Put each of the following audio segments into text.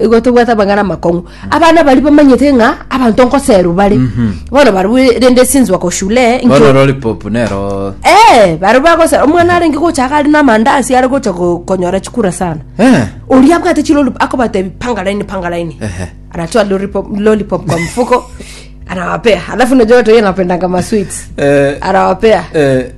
igo tobwate amang'ana amakong'u abana bari bamanyete ng'a abanto nkoseru bare bono barabwo rende sinzwa ko shule bono nkio lollipop nero Eh, bari bagose omwana arenge gocha iga ari namandasi are gocha ko- konyora chikura sana Eh, oria abwate chilolip akobatebi panga laini panga laini Ehe. anatoa lollipop, lollipop kwa mfuko anawapea alafu najua watu wengi anapendanga masweets eh, anawapea eh,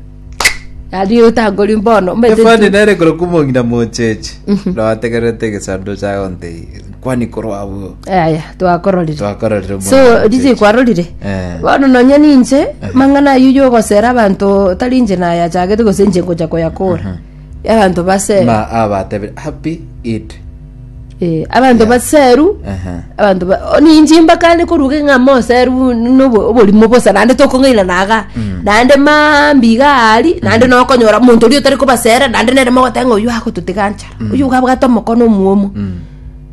Aria otakoria bono. Omanyete Efani tu- nere korokwa omong'ina mocheche noategererete egesanduku chagonte kwani korwa abwo Aya, twakororire. twakororire omong'ina so mocheche. riche kwarorire Eh. bono nonya ninche mang'ana ayio yogosera abanto tari inche nayachagete gose inche ngocha koyakora Abanto baseru. Ng'a abatebire, Happy Eid. Eh, abanto Yeah. baseru. Aha. Abanto ba o, ninche mbaka ande koruga ng'a moseru nobo oborimo bosa naende tokong'aina naga. Naende mambi iga ari, naende nokonyora omonto oria otari kobasera naende nere mogoteba ng'a oyio agototiga nchara. Oyio iga abwate omokono omwomo.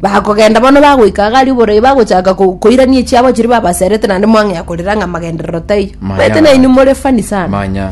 Bakogenda bono bagoika iga aria oborai bagochaka ko- koirania echiabo chiria babaserete naende mwang'ea korera ng'a amagenderero taiyo. Maya. Omanyete nainwe more funny sana. Manya.